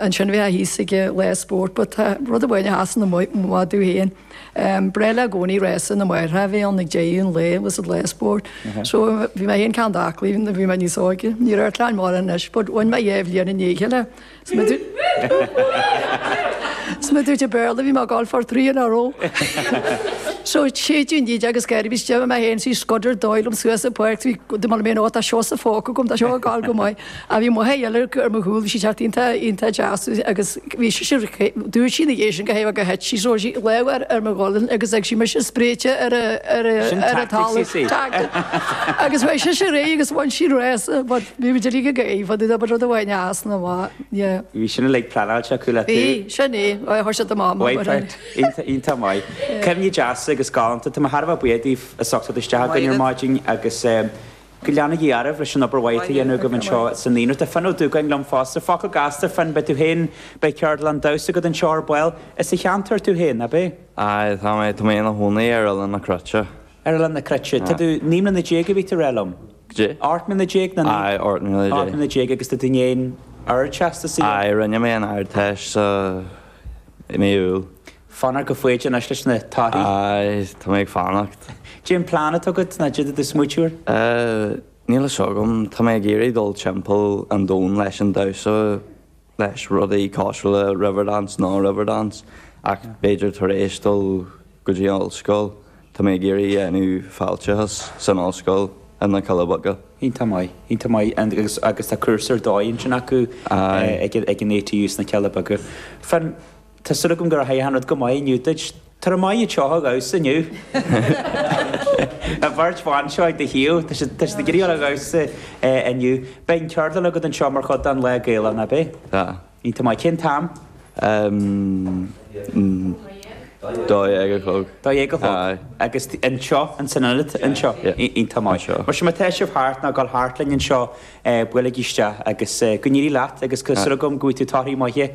Ansin bheadh i gcónaí lá spóirt, but tá rud amháin a sheasann amuigh, mo mhamaí féin. Ba bhreá léi i gcónaí rása na máithreacha a bhí ann ag deireadh an lae, was it lá spóirt. So bhí mé féin cineál aclaí nuair a bhí mé níos óige. Ní raibh airtléáin mhóra anois, but bhain mé dhá bhliain i ndiaidh a chéile. Is mar a déarfá i mBéarla, bhí mé ag gabháil for three in a row. So séideadh an fhídeog agus gairid, bhí stiall i mo théann sí scudder dóigh liom suas an pháirc, bhí, d'imigh mé in awe, tá siadsan fágtha agam, tá seo ag gabháil go maith. Ach bhí Maigh Eo ar ar mo chúl, bhí sí ag teacht iontach deas agus bhí sise, dúirt sí ina dhiaidh sin go háithrid gur thit sí so, chuir sí lámh ar mo ghualainn agus d'fhág sí mise spréite ar a talamh, tactic, agus away sise léi agus bhain sí an rás, but bhí muid uilig ag gáirí, but abair rud amháin a sheasann amach, yeah. Bhí sin uilig pleanáilte aici, an bhfuil a fhios agat? Bhí, sin é, ó thug siad do Mháma mar sin. Waipert, iontach, iontach maith. Cuimhní deasa agus galánta, tá mé thar a bheith buíoch díbh as theacht isteach againn ar maidin agus eh, go leanaigí oraibh leis an obair mhaith atá a dhéanamh agaibh anseo sa naíonra. Tá Finn Ó Dúgáin liom fosta. Focal gasta, Finn, beidh tú féin, beidh ceardlann damhsa agat anseo ar ball. Is as an cheantar tú féin, ab é? Aye, tá mé, tá mé i mo chónaí ar Oileán na Cruite. Ar Oileán na Cruite. Tá tú, naoi mbliana déag a bhí tú a rá liom? Cé? Ocht mbliana déag nó naoi? Aye, ocht mbliana déag. Ocht mbliana déag agus tá tú i ndiaidh an Ardteastas, a? Aye, rinne mé an Ardteist sa, i mí Iúil. Fanacht go foighdeach anois leis na torthaí. Aye, tá mé ag fanacht. Cén plean atá agat, nó caidé do smaointiú? Níl fhios agam. Tá mé ag iarraidh dul timpeall an domhain leis an damhsa, leis rudaí cosúil le Riverdance, nó Riverdance, ach b'fhéidir tar éis dul go dtí an ollscoil. Tá mé ag iarraidh déanamh fáilteachas san ollscoil i na Cealla Beaga. Iontach maith, iontach maith. Agus tá cúrsa ar dóigh ansin acu ag an ATU sna Cealla Beaga. Fan. Tá súil agam go rachaidh an rud go maith inniu duit. Go raibh maith agat as a theacht abhus inniu. A bheirt bhan seo ag do thaobh, tá siad ag iarraidh dul abhus inniu. Beidh an cheardlann agat anseo mar chuid den Lá Gaelach, ná beidh? Tá. Iontach maith. Cén t-am? Dó dhéag a chlog. Dó dhéag a chlog? Aye. Agus anseo, in san ionad anseo? Yeah. Iontach maith. Anseo. Mar sin má tá sibh thart, ná goil thart linn anseo, buailigí isteach agus go n-éirí leat agus tá súil agam go bhfaighidh tú torthaí maithe.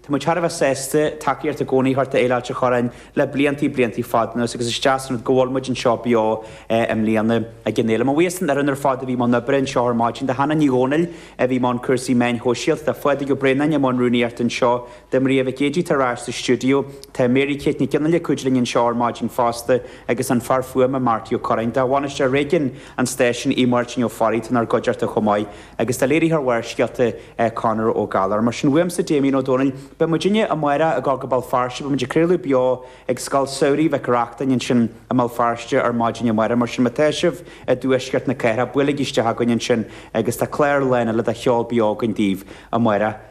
Tá muid thar a bheith sásta tacaíocht i gcónaí a thabhairt d'Fhéile Ailt a' Chorráin le bliantaí bliantaí fada anuas agus is deas an rud go bhfuil muid anseo beo i mbliana ag an fhéile. Mo bhuíochas don fhoireann ar fad a bhí i mbun oibre anseo ar maidin, do Hannah Ní Dhomhnaill a bhí i mbun cúrsaí meán sóisialta, do Phadraig Ó Braonáin i mbun rúnaíochta anseo, do Mharia Mhic Géidigh atá ar ais sa stiúideo, tá Mary Kate Nic Fhionnghaile ag cuidiú linn anseo ar maidin fosta agus an fear fuaime Marty Ó Curráin, do bhainisteoir réigiúin an stáisiúin, Aodh Máirtín Ó Fearraigh atá inár gcuideachta chomh maith. Agus do léiritheoir Bharrscéalta Conor Ó Gallchóir. Mar sin uaimse, Damien Ó Dónaill, beidh muidinne amárach ag gabháil go Béal Feirste, beidh muid ag craoladh beo ag Scoil Samhraidh Mhic Reachtain ansin i mBéal Feirste ar maidin amárach, mar sin má tá sibh i dtuaisceart na cathrach, buailigí isteach againn ansin agus tá clár lán eile de cheol beo againn daoibh amárach.